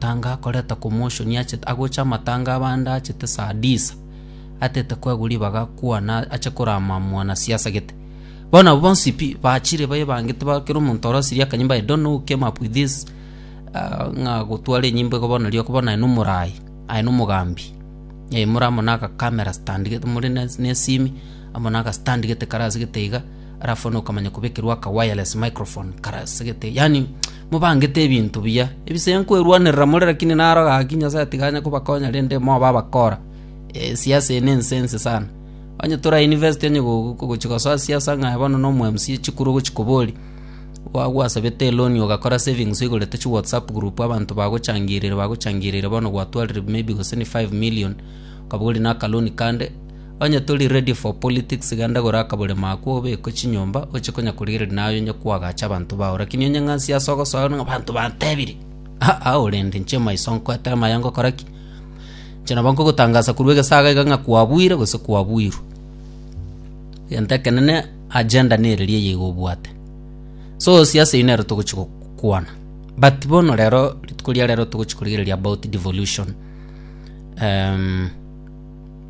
Tanga akoreta commotion achete agocha amatanga abande achete saa disa atete koegwa ribaga kwana ache korama mwana siasa gete bono abwo bonsi pi bachire baye bangete ba kera omonto orosirie akanyimbo i don't know who came up with this ah, ng'a gotwara enyimbo igo bono rioko bono aye nomorayi aye nomogambi eh, more amo na agakamera stand gete more na na esimi amo na agastand gete kare ase gete iga alafu bono okamanya kobekerwa aka wireless microphone kare ase gete yani Mobangete ebinto biya, ebisaya nkwerwanerera more, rakini naroge gaki Nyasae tiganya kobakonya rende mobe abakora. Ee, siasa eye nense ense sana. Onye tore a university onye gogochia gosoa siasa ng'aye bono nomo MC chikuru ogochia koboria, Gwa gwasabete eloni ogakora savings oigorete chi WhatsApp group abanto bagochangireire bagochangireire bono gwatwarire maybe gose ni five million okaboria na aka loan kande, Onye tori ready for politics genda gora akaborimo ako obekwe chinyomba oche konya korigereria naye onye kwagacha abanto bao lakini onye ng'ansi ase ogosoa ng'a abanto bantebiri aa orende inche maiso nkoetera maya ngokora ki inche nabo nkogotangasa korwa egesaga iga ng'a kwabuire gose kwabuirwe egento ekenene agenda nere ria eyeiga obwate so osie ase eyio nero togochi gokwana but bono rero rituko ria rero togochi korigereria about devolution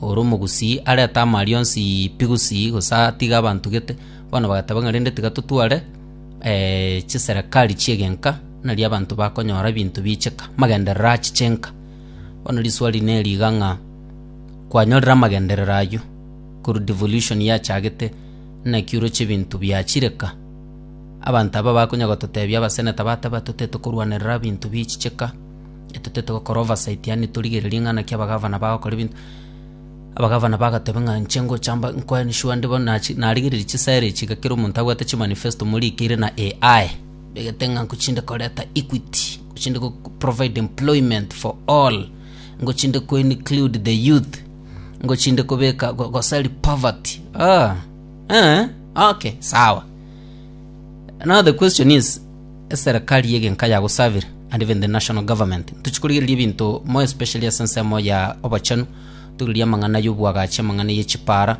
Ore omogusii arete amaaria onsi pi gusii, gose atige abanto gete. Bono bagateba ng'a rende tiga totware chiserekari chi'egenka, nari abanto bakonyora ebinto biicheka, amagenderero achiche enka. Bono riswali neri iga ng'a, kwanyorire amagenderero ayio korwa devolution yachagete, naki oroche ebinto biachire ka? Abanto aba bakonya gototebia abaseneta bateba totaete korwanerera ebinto bichiche ka. Etotete gokora oversight, yaani torigererie ng'a naki abagavana bagokora ebinto. Abagavana bagateba ng'a inche ngocha mba nko ensure nde bono nachi narigereiri chisera echi iga kera omonto abwate chimanifesto morikeire na AI, begete ng'a nko chinde koreta equity, nko chinde go provide employment for all, nko chinde ko include the youth, nko chinde kobeka go- gosari poverty. Ah, eh, okay, sawa. Now the question is. Eserekari y'egenka yagosabire, and even the national government, ntochie korigereria ebinto more especially ase ensemo ya obochenu, torigererie amang'ana y'obwagachi, amang'ana ye chipaara,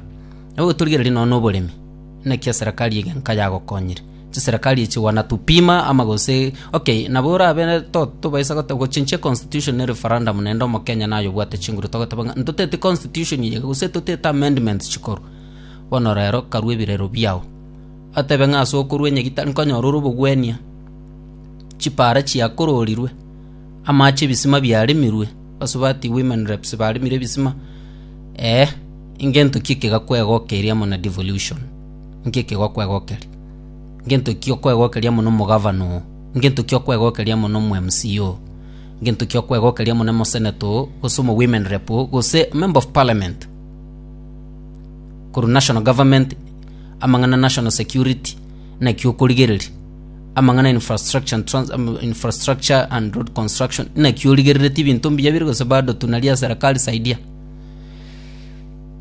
nabo torigererie nonya na oboremi. Naki eserekari y'egenka yagokonyire. Chiserekari echi wana to pima ama gose okay nabo orabe to tobaisa gote gochinchia constitution ne referendum naende omokenya naye obwate chinguru togoteba ng'a ntotete constitution eye gose totete amendments chikorwa. Bono rero karue ebirero biao. Atebe ng'a ase okorua enyegi tari konyorora obogwenia, chipaara chiakororirwe, amaache 'ebisima biaremirwe, basubati women reps baremire ebisima, ee, ngento ki ekegakwegokeria amo na devolution? Nki ekegokwegokeria? Ngento ki okwegokeria amo na omogavana oo? Ngento ki okwegokeria amo na omo mc oo? Ngento ki okwegokeria amo na omosenator oo, gose omo women rep oo, gose member of parliament korwa national government. amang'ana national security naki okorigereria, amang'ana infrastructure and, trans, um, infrastructure and road construction naki origerereti ebinto mbuya bire gose bado tunaria serikali saidia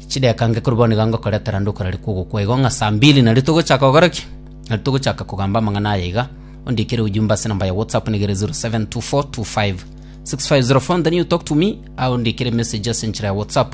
chideka nge korwa bono iga ngokoretera nde okorari kogokwa igo ng'a saa mbili nari togochaka gokora ki nari togochaka kogamba amang'ana aya iga ondikere ujumbe ase namba ya whatsapp nigere 0724256504 and then you talk to me au ndikere message ase enchera ya whatsapp